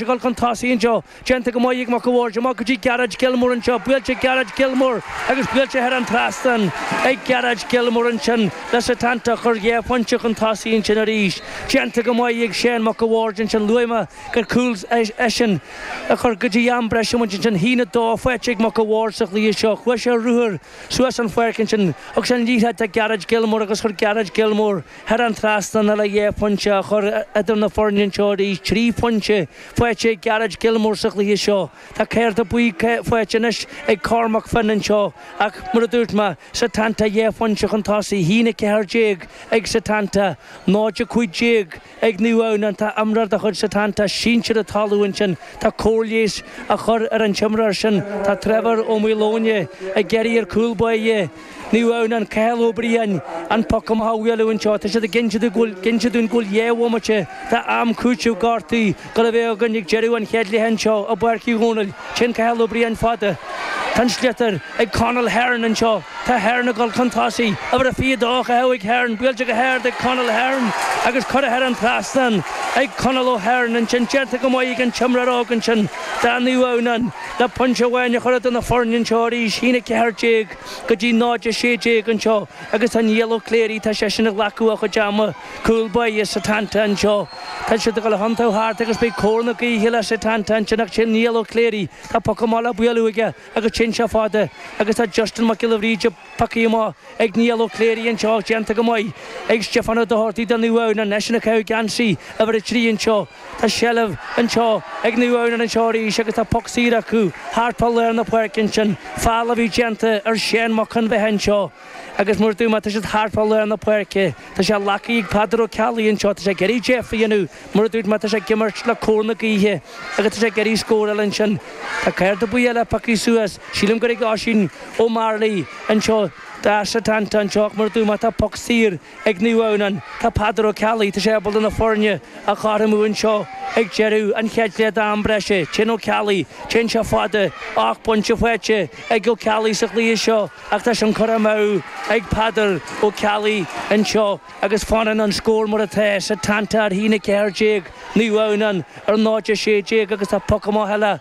dhul chun tosaigh anseo déanta go maith ag Mac a' Bhaird amach go dtí Gerard Gilmore anseo, buailte ag Gerard Gilmore agus buailte thar an trasnán ag Gerard Gilmore ansin le Setanta a chur dhá phointe chun tosaigh ansin arís, déanta go maith ag Seán Mac a' Bhaird ansin luaigh mé gur cúl eisean a chuir go dtí am breise muid ansin. 1-2 faighte ag Mac a' Bhaird sa gcluiche seo, chuaigh sé ruathar suas an pháirc ansin, thug sé an liathróid do Gerard Gilmore agus chuir Gerard Gilmore. Thar an trasnán é le dhá phointe a chur idir na foirne anseo arís, trí phointe faighte ag Gerard Gilmore sa chluiche seo, tá cárta buí faighte anois ag Cormac Finn anseo ach, mar a dúirt mé, Setanta dhá phointe chun tosaigh, 1-14 ag Setanta, 0-15 ag Naomh Adhamhnáin, tá imreoir de chuid Setanta sínte ar an talamh ansin. Tá cóir leighis a chur ar an t-imreoir sin. Tá Trevor Ó Maoileoin ag iarraidh ar cúl báire. Naomh Adhamhnáin, Cathal Ó Briain, an poc amach a bhualadh anseo. Tá siad ag inse dúinn go bhfuil dhá bhomaite d'am cúitimh gortaithe le bheith againn ag deireadh an chéad leath anseo i bPáirc Uí Dhónaill. Téann Cathal Ó Briain fada. Tá an sliotar ag Conall Hearn anseo. Tá Hearn ag dul chun tosaigh. Uimhir a 22 a thóg Hearn. Buailte go hard ag Conall Hearn agus curtha thar an trasnán ag Conall Ó hEarn ansin. Déanta go maith ag an t-imreoir óg ansin, do Naomh Adhamhnáin, le pointe amháin a chur idir na foirne anseo arís. 1-14. go dtí 0-16 anseo agus tá Niall Ó Cléirigh, tá seisean ag glacadh a chuid ama, cúl báire Setanta anseo. Tá siad ag dul a thiontú thart agus beidh cóir na gaoithe le Setanta ansin ach sin Niall Ó Cléirigh, tá poc amach le bualadh aige agus téann sé fada agus tá Justin Mac Giolla Bhríde, poc amach ag Niall Ó Cléirigh anseo déanta go maith ag Stiofán Ó Dochartaigh do Naomh Adhamhnáin, eisean ag caitheamh geansaí uimhir a trí anseo. Tá seilbh anseo ag Naomh Adhamhnáin anseo arís agus tá poc saor acu thart fá lár na páirce ansin. Feall a bhí déanta ar Seán Mac an Bheatha anseo agus mar a dúirt mé tá siad thart fá lár na páirce. Tá sé le glacadh ag Peadar Ó Ceallaigh anseo, tá sé ag iarraidh deifir a dhéanamh, mar a dúirt mé tá sé ag imirt le cóir na gaoithe agus tá sé ag iarraidh scóráil ansin. Tá cárta buí eile pioctha suas, sílim gur ag Oisín Ó Mearlaigh anseo do Setanta anseo ach mar a dúirt mé tá poc saor ag Naomh Adhamhnáin. Tá Peadar Ó Ceallaigh tá sé ábalta na foirne a chothromú anseo ag deireadh an chéad leath d'am breise. Téann Ó Ceallaigh, téann sé fada, ocht bpointe faighte ag Ó Ceallaigh sa chluiche seo ach tá sin curtha amú ag Peadar Ó Ceallaigh anseo agus fanann an scór mar atá. Setanta ar 1-14, Naomh Adhamhnáin ar 0-16 agus tá poc amach eile.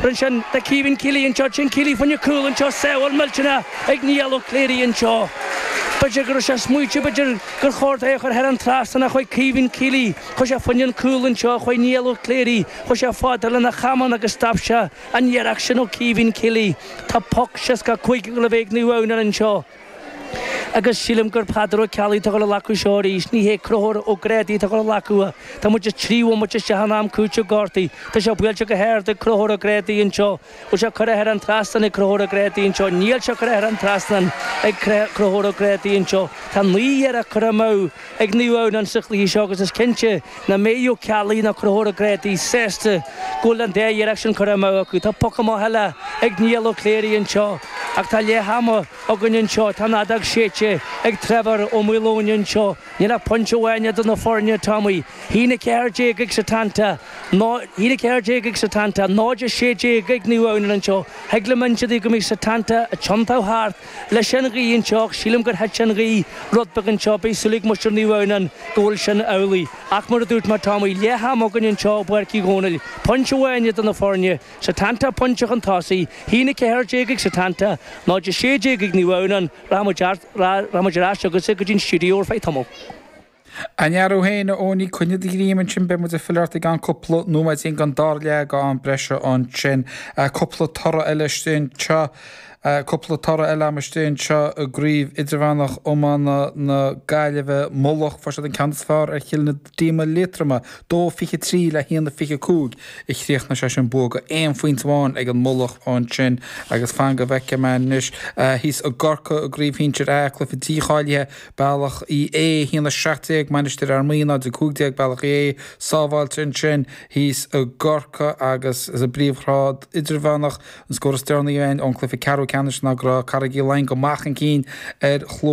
Bronn sin do Caoimhín Kealy anseo, téann Kealy fá choinne cúl anseo, sábháil mhillteanach ag Niall Ó Cléirigh anseo. B'fhéidir go raibh sé ag smaointiú, b'fhéidir gur chóir dó é a chur thar an trasnán, chuaigh Caoimhín Kealy, chuaigh sé fá choinne an cúl anseo chuaigh Niall Ó Cléirigh, chuaigh sé fáidir lena chamán agus stop sé an iarracht sin ó Caoimhín Kealy. Tá poc 65 le bheith ag Naomh Adhamhnáin anseo. Agus sílim gur Peadar Ó Ceallaigh atá ag dul a ghlacadh seo arís, ní hé Conchúr Ó Grádaigh atá ag dul a ghlacadh é. Tá muid trí bhomaite isteach in am cúitimh gortuithe. Tá sé buailte go hard ag Conchúr Ó Grádaigh anseo. Bhfuil sé curtha thar an trasnán ag Conchúr Ó Grádaigh anseo? Níl sé curtha thar an trasnán ag Conchúr Ó Grádaigh anseo. Tá naoi n-iarracht curtha amú. ag Naomh Adhamhnáin sa chluiche seo agus is cinnte nach mbeidh Ó Ceallaigh ná Conchúr Ó Grádaigh sásta go bhfuil an dá iarracht sin curtha amú acu. Tá poc amach eile ag Niall Ó Cléirigh anseo ach tá leath ama againn anseo. Tá an fheadóg séidte ag Trevor Ó Maoileoin anseo. Níl ach pointe amháin idir na foirne, tá muid 1-14 ag Setanta, 1-14 ag Setanta, 0-16 ag Naomh Adhamhnáin anseo. Thig liom inse daoibh go mbeidh Setanta ag tiontú thart. leis an ghaoth anseo ach sílim gur thuit an ghaoth rud beag anseo. Beidh súil ag muintir Naomh Adhamhnáin go bhfuil sin amhlaidh. Ach mar a dúirt mé tá muid leath am againn anseo i bPáirc Uí Dhónaill. Pointe amháin idir na foirne, Setanta pointe chun tosaigh, 1-14 ag Setanta, 0-16 ag Naomh Adhamhnáin. Rachaidh muid ar ais chugatsa go dtí an stiúideo ar feadh tamaill. An fear thú féin, a Eoghainí, coinnigh do ghreim ansin, beidh muid ag filleadh ort i gceann cúpla nóiméidín don dara leath den am breise ansin. Cúpla toradh eile istigh anseo, cúpla toradh eile am istigh anseo i gCraobh Idirmheánach Iomána na Gaillimhe, Mullach, fuair siad an ceann is fearr ar Chill na Díoma Liatroma, 2-23 le 1-25 a chríochnaigh sé sin, bua aon phointe amháin ag an Mullach ansin agus fan go bhfeice mé anois thíos i gCorcaigh i gCraobh Shinsir A, cluiche dícháilithe Bealach Uí Aodha 1 17 Mainistir Fhear Maí 0 15 Bealach Uí Aodha sábháilte ansin thíos i gCorcaigh agus sa bpríomhghrád idirmheánach, an scór is deireanaí ón cluiche ceathrú ceannais ná go raibh Carraig Uí Leighin go maith chun cinn ar